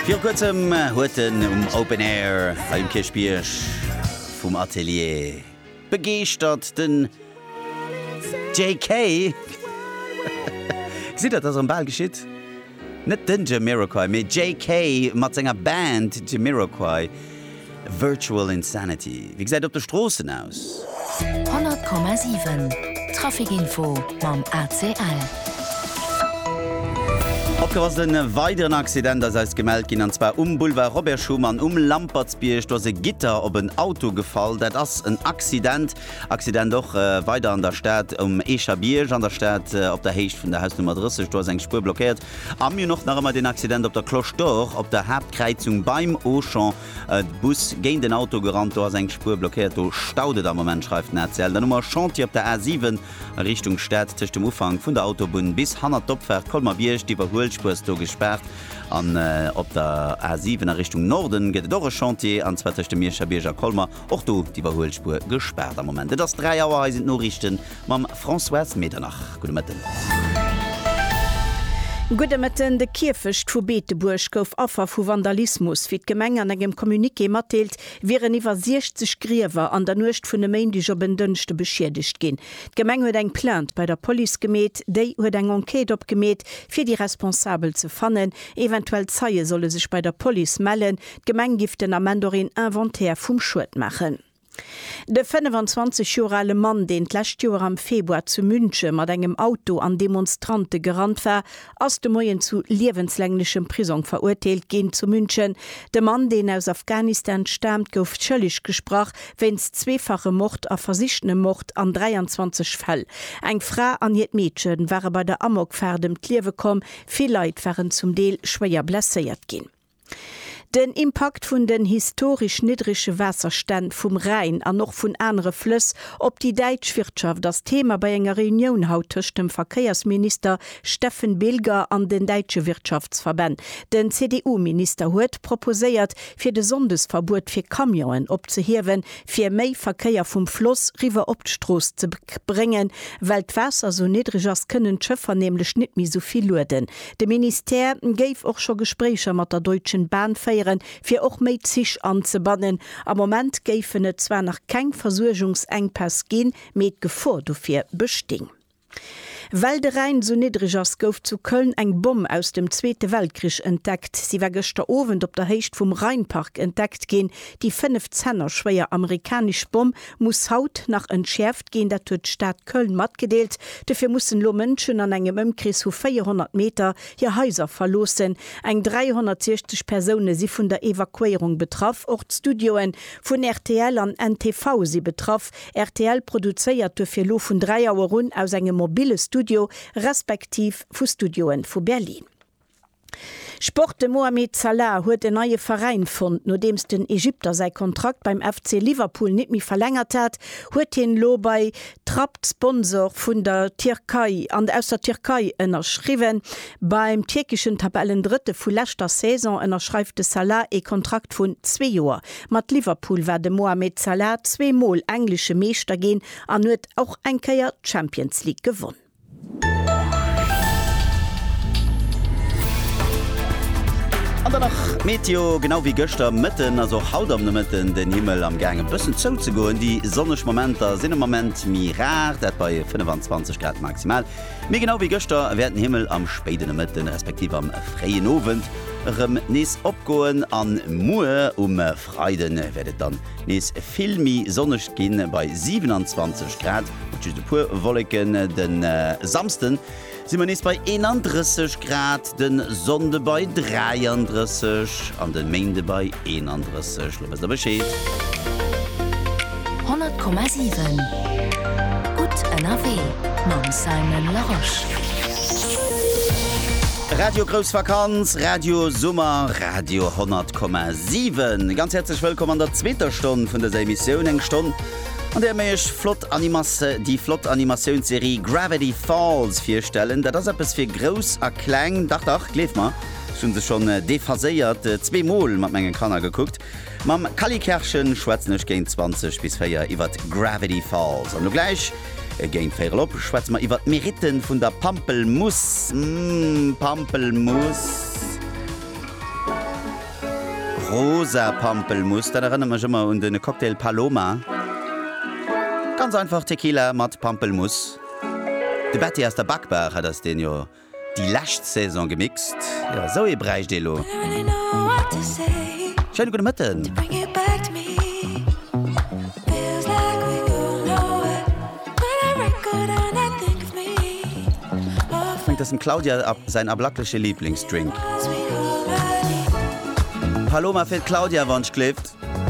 Viru kuerzem huet en um Open Air hei um Kierchbierg vum Atelier begeeschtert, den JK. Gesitt Der, dass erëm bal geschitt? Net den Jamiroquai, mee JK mat senger Band Jamiroquai. Virtual Insanity, Wéi gesäit et op de Stroossen aus? 100,7 Trafic-Info mam ACL. Opgepasst, e weideren Accident ass eis gemellt ginn, an zwar um Boulevard Robert Schuman um Lampertsbierg. Do ass e Gitter op en Auto gefall. Dat ass en Accident. Accident och weider an der Stad um Eecherbierg, an der Stad op der Héicht vun der Hausnummer 30. Do ass eng Spuer blockéiert. A mir hunn och nach ëmmer deen Accident op der Cloche d'Or, op der Haaptkräizung beim Auchan. E Bus géint en Auto gerannt, do ass eng Spuer blockéiert. Do staut et am Moment, schreift den ACL. Dann hu mer e Chantier op der A 7 a Richtung Stad, tëscht dem Ufank vun der Autobunn bis hannert d'Opfaart Colmer-Bierg. D'Iwwerhuelspuer ass do gespaart. An op der A 7 a Richtung Norden gëtt et och e Chantier, an zwar tëscht dem Mierscher Bierg a Colmer. Och do d'Iwwerhuelspuer gespaart am Moment. Et ass 3 Auer, hei sinn d'Noriichte mam Françoise Medernach. Gudde Mëtten. Gudde Mëtten. De Kierfecht vu Beetebuerg gouf Affer vu Vandalismus. Wéi d'Gemeng an engem Communiqué matdeelt, wieren iwwer 60 Griewer an der Nuecht vun e Méindeg op en Dënschde beschiedegt ginn. D'Gemeng huet eng Plainte bei der Police gemeet. Déi huet eng Enquête opgemeet, fir déi Responsabel ze fannen. Eventuell Zeie solle sech bei der Police mellen. D'Gemeng giff den Ament och een Inventaire vum Schued maachen. De 25 Joer ale Mann, deen d'lescht Joer am Februar zu Münche mat engem Auto an Demonstrante gerannt war, ass de Moien zu liewenslänglechem Prisong verurteelt ginn. Zu München, De Mann, deen aus Afghanistan staamt, gouf schëlleg gesprach wéinst zweefachem Mord a versichtenem Mord an 23 Fäll. Eng Fra an hiert Meedche ware bei der Amokfaart ëm d'Liewe komm. Vill Leit waren zum Deel schwéier blesséiert ginn. Den Impakt vun den historesch niddrege Waasserstänn vum Rhäin an och vun anere Flëss op déi däitsch Wirtschaft ass Thema bei enger Reunioun haut tëscht dem Verkéiersminister Steffen Bilger an den däitsche Wirtschaftsverbänn. Den CDU-Minister huet proposéiert, fir de Sonndesverbuet fir Camionen opzehiewen, fir méi Verkéier vum Floss riwwer op d'Strooss ze bréngen. Well d'Waasser sou niddreg ass, kënnen d'Schëffer nämlech net méi sou vill lueden, De Ministère géif och scho Gespréicher mat der Deutschen Bahn féieren, fir och méi Zich anzebannen. Am Moment géifen et zwar nach keng Versuergungsenkpäss ginn, mee d'Gefor dofir besting. Well de Rhäin sou niddreg ass, gouf zu Köln eng Bomm aus dem Zweete Weltkrich entdeckt. Si war gëschter Owend op der Héicht vum Rheinpark entdeckt ginn. Déi 5 Zenner schwéier amerikanesch Bomm muss haut nach entschäerft ginn. Dat huet d'Stad Köln matgedeelt. Dofir mussen elo Mënschen an engem Ëmkrees vu 400 Meter hir Haiser verloossen. Eng 360 Persoune si vun der Evakuéierung betraff. Och d'Studioe vun rtl an NTV si betraff. Rtl produzéiert dofir elo vun 3 Auer un aus engem mobille Studio respektiv vu Studioe vu Berlin. Sport, De Mohamed Salah huet en neie Veräin fonnt. Nodeems den Egypter säi Kontrakt beim FC Liverpool net méi verlängert hat, huet hien elo bei Trapt, Sponsor vun der Tierkei an aus der Tierkei, ënnerschriwwen. Beim tierkeschen Tabellendrëtte vu leschter Saison ënnerschreift de Salah ee Kontrakt vun zwee Joer. Mat Liverpool war de Mohamed Salah zwee Mol englesche Meeschter ginn an huet och eng Kéier d'Champions League gewonn. An dann nach d'Meteo, genau wéi gëschter Mëtten ass och haut am Nomëtten den Himmel am gaang e bëssen zouzegoen. Déi sonneg Momenter sinn am Moment méi rar, dat bei 25 Grad maximal. Mee genau wéi gëschter wäert den Himmel am spéiden Nomëtten, respektiv am fréien Owend erëm nees opgoen a muer um. Freide wäert et dann nees vill méi sonneg ginn, bei 27 Grad mat just e puer Wolleken. De Samsde si mer nees bei 31 Grad, de Sonnde bei 33 an de Méinde bei 31. Lo wësst der Bescheed. 100,7 Gutt ënnerwee mam Simon Larosche. Radio Grouss Vakanz, Radio Summer, Radio 100,7. Ganz häerzlech wëllkomm an der zweeter Stonn vun dëser Emissioun. Eng Stonn, an där mir Iech flott Animas, déi flott Animatiounsserie Gravity Falls virstellen. Dat ass eppes fir Grouss a Kleng. Dach, dach, gleeft mer, ech hu se schonn, déphaséiert, zwee Mol mat menge Kanner gekuckt. Mam Kally Kerschen schwätzen ech géint 20 bis 4 iwwert Gravity Falls. An lo gläich géint véierel op schwätze mer iwwert d'Merite vun der Pampelmuss. Mmm, Pampelmuss. Rosa Pampelmuss, dat erënnert mech ëmmer un de Cocktail Paloma. Ganz einfach Tequila mat Pampelmuss. De Betty aus der Backbar, dat ass deen jo. Déi lescht Saison gemixt, jo esou ee bräicht ee lo. Schéine gudde Mëtten. Schéngt dass dem Claudia säin ablackleche Lieblingsdrink Paloma fir d'Claudia wann d'Schléft.